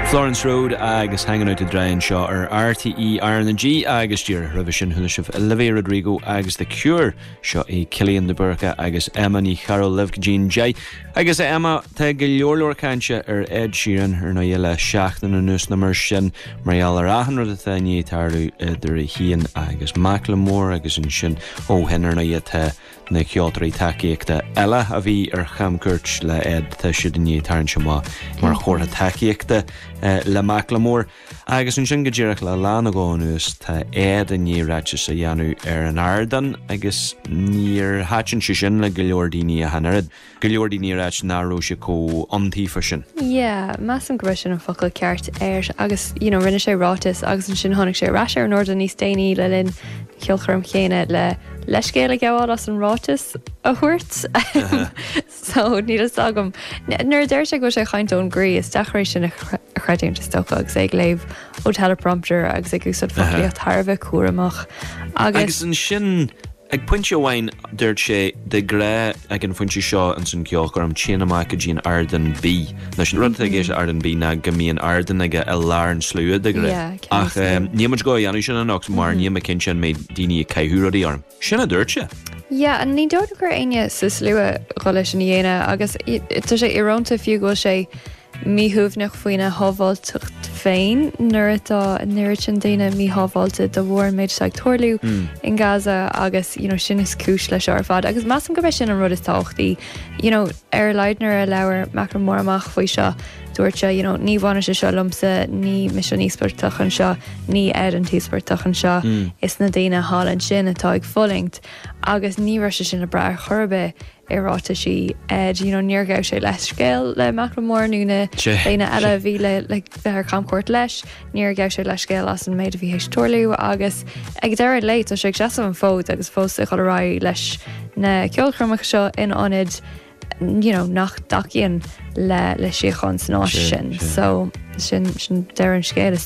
Florence Road agus Hanging Out to Dry anseo ar RTE RnaG agus díreach roimhe sin chuala sibh Olivia Rodrigo agus The Cure seo é Cillian de Búrca agus Emma Ní Chearúil libh go dtí'n deich agus a Emma tá go leor leor cainte ar Ed Sheeran ar ndóigh le seachtain anuas nó mar sin mar gheall ar achan rud atá i ndiaidh tarlú idir é féin agus Macklemore agus ansin ó shin ar ndóigh tá na ceoltóirí tacaíochta eile a bhí ar chamchuairt le Ed, tá siad i ndiaidh tarraingt amach mar chomhartha tacaíochta le Macklemore. Agus ansin go díreach le lá nó dhó anuas tá Ed i ndiaidh ráiteas a dhéanamh ar an ardán agus níor thaitin sé sin le go leor daoine ach an oiread. Go leor daoine a rá nach raibh sé comh iontaofa sin. Yeah, measaim go raibh sin an focal ceart air agus you know rinne sé ráiteas agus ansin tháinig sé ar ais ar an ardán níos déanaí le linn an cheolchoirm chéanna le leithscéal a ghabháil as an ráiteas a thabhairt. So níl fhios agam. N- nuair a deir sé go bhfuil sé ag caint ón gcroí is deacair é sin a chre- a chreidiúint is dócha agus é ag léamh ó teleprompter agus ag úsáid foclaíocht thar a bheith cúramach agus. Agus ansin Ag pointe amháin dúirt sé, De ghnáth ag an phointe seo ins an cheolchoirm, téim amach go dtí an ardán B. Anois, an rud atá i gceist leis an ardán B ná go mbíonn ardán aige i lár an tslua, de ghnáth. Yeah, i gceann an tslua. Ach em, níl muid ag gabháil a dhéanamh sin anocht mar níl mé cinnte an mbeidh daoine ag caitheamh rudaí orm. Sin a dúirt sé. Yeah, ní dóigh go raibh éinne sa slua ag dul é sin a dhéanamh agus i- tá sé irónta fiú go bhfuil sé míshuaimhneach faoina shábháilteacht féin nuair atá na mílte daoine míshábháilte de bharr an méid atá ag tarlú in Gaza agus you know sin is cúis leis seo ar fad agus measaim gurb é sin an rud is tábhachtaí you know ar a laghad nuair a labhair Macklemore amach faoi seo dúirt sé you know ní bhaineann sé seo liomsa ní mise an íospartach anseo ní Ed an t-íospartach anseo is na daoine thall ansin atá ag fulaingt agus ní raibh sé sin le brath ar chor ar bith i ráiteas Ed. Do you know níor ghabh sé leithscéal le Macklemore nó na daoine eile a bhí le le ar camchuairt leis. Níor ghabh sé leithscéal as an méid a bhí théis tarlú agus ag deireadh an lae tá sé ag seasamh an fód agus fós ag dul ar aghaidh leis na ceolchoirmeacha seo in ionad you know nach dtacaíonn le le síocháin san áit sin. So sin sin deireadh an scéil is.